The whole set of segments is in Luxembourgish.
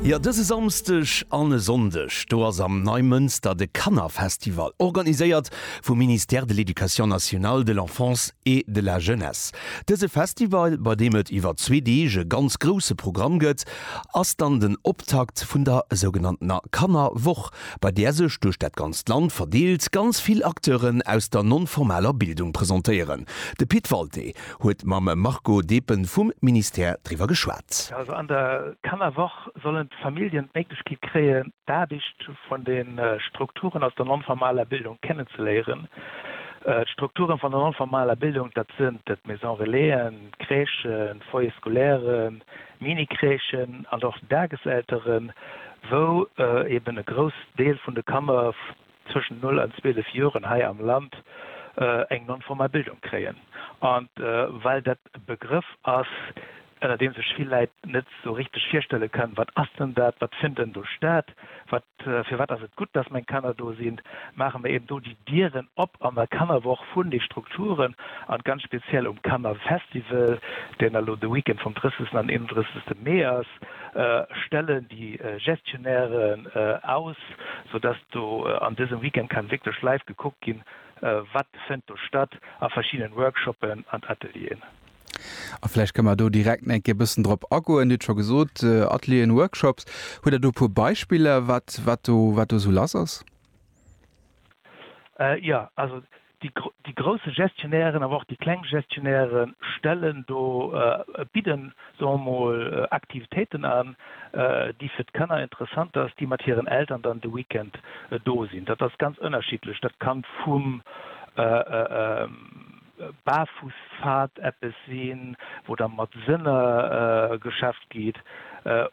Jo, dëse Samsdeg an e Sonndeg, do ass am Neimënster de Kannerfestival, organiséiert vum Ministère de l'Éducation nationale, de l'Enfance et de la Jeunesse. Dëse Festival, bei deem et iwwer zwee Deeg e ganz grousse Programm gëtt, ass dann den Optakt vun der sougenanntener Kannerwoch, bei där sech duerch dat ganzt Land verdeelt ganz vill Acteuren aus der non-formaler Bildung presentéieren. De Pit Walté huet mam Marco Depen vum Ministère driwwer geschwat. Also an der Kannerwoch sollen d'Familljen d'Méiglechkeet kréien, d'Aarbecht vun de Strukturen aus der non-formaler Bildung kennenzeléieren. D'Strukturen vun der non-formaler Bildung, dat sinn d'Maison Relaisen, d'Crèchen, d'Foyers scolaires, Mini-Crèchen an och d'Dageselteren, wou eeben e grouss Deel vun de Kanner zwëschen 0 an 12 Joren hei am Land eng non-formal Bildung kréien. An well dat e Begrëff ass, ënner deem sech vill Läit net esou richteg virstelle kënnen, wat ass denn dat, wat fënnt en do statt, wat, firwat ass et gutt, dass meng Kanner do sinn, maache mir eben do déi Dieren op an der Kannerwoch vun de Strukturen an ganz speziell um Kannerfestival, deen elo de Weekend vum 30 an 31. Mee ass, stellen déi Gestionnairen aus. App, sou dass do an dësem Weekend kann wierklech live gekuckt ginn, wat fënnt do statt a verschiddenen Workshoppen an Atelieren. A vläicht kënne mer do direkt nach eng Kéier e bëssen drop agoen. Dir hutt scho gesot, Atelieren, Workshops. Hutt Der do e puer Beispiller, wat, wat do, wat do esou lass ass? Jo, also Déi grousse Gestionnairen, awer och déi kleng Gestionnaiere stellen do, bidden, soe mer mol, Aktivitéiten an, déi fir d'Kanner interessant ass, déi mat hiren Eltern dann de Weekend do sinn. Dat ass ganz ënnerschiddlech. Dat kann vum Barfussfahrt eppes sinn, wou da mat Sënner geschafft geet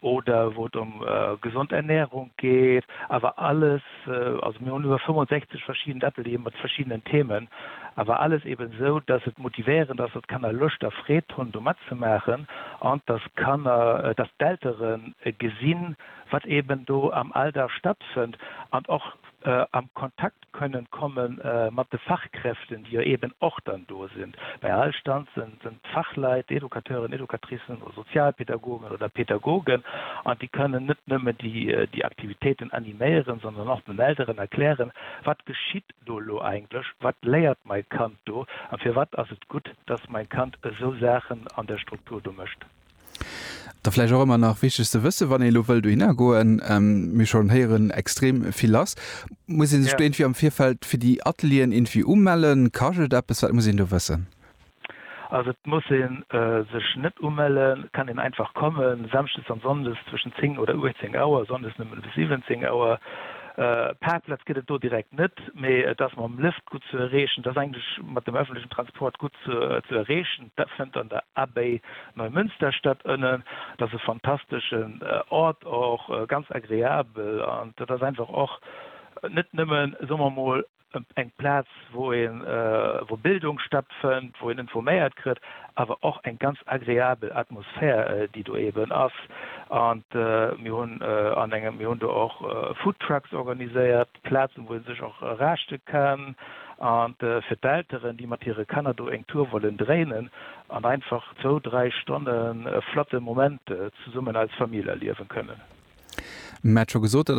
oder wou et ëm gesond Ernährung geet, awer alles, Mat, also mir hunn iwwer 65 verschidden Atelieren mat verschiddenen Themen, awer alles eben esou, dass et motivéierend ass, dass d'Kanner Loscht a Freed hunn do matzemaachen an dass d'Kanner, dass d'Eltere gesinn, wat eben do am Alldag stattfënnt an och am Kontakt kënnen komme mat de Fachkräften, déi jo eben och dann do sinn. Bei all Stand së sinn d'Fachleit, Educateuren, Educatricen oder Sozialpädagogen oder Pädagogen, an déi kënnen net nëmmen déi Aktivitéiten animéieren, sondern och den Elteren erklären, Wat geschitt do elo eigentlech? Wat léiert mäi Kand do? A firwat ass et gutt, dass mäi Kand esou Saachen an der Struktur do mécht? Da vläicht och ëmmer nach wichteg ze wëssen, wann ee lo wëllt dohinner goen, mir schonn héieren, extrem vill lass. Muss ee sech do irgendwie am Virfeld fir déi Atelieren irgendwie umellen? Kascht et eppes? Wat muss een do wëssen? Also et muss ee sech net umellen, et kann een einfach kommen. Samschdes an sonndes zwëschen 10 oder 18 Auer, sonndes nëmmen bis 17 Auer. Parkplatz gëtt et do direkt net, mee et ass mam Lëft gutt ze erreechen, et ass eigentlech mat dem öffentlechen Transport gutt ze erreechen. Dat fënnt an der Abbaye Neumünster statt. Ënnen, dat ass e fantasteschen Ort, och ganz agreabel. An dat ass einfach och net nëmmen, soe mer emol, eng Plaz, wou een, wou Bildung stattfënnt, wou een informéiert kritt, awer och eng ganz agreabel Atmosphär, déi do eeben ass. An mir hunn an engem, mir hunn do och Foodtrucks organiséiert. Plazen, wou ee sech och raschte kann, a fir d'Elteren, déi mat hire Kanner do eng Tour wollen dréinen an einfach zwou, dräi Stonne flotte Moment zesummen als Famill erliewen kënnen. Mä et scho gesot, dat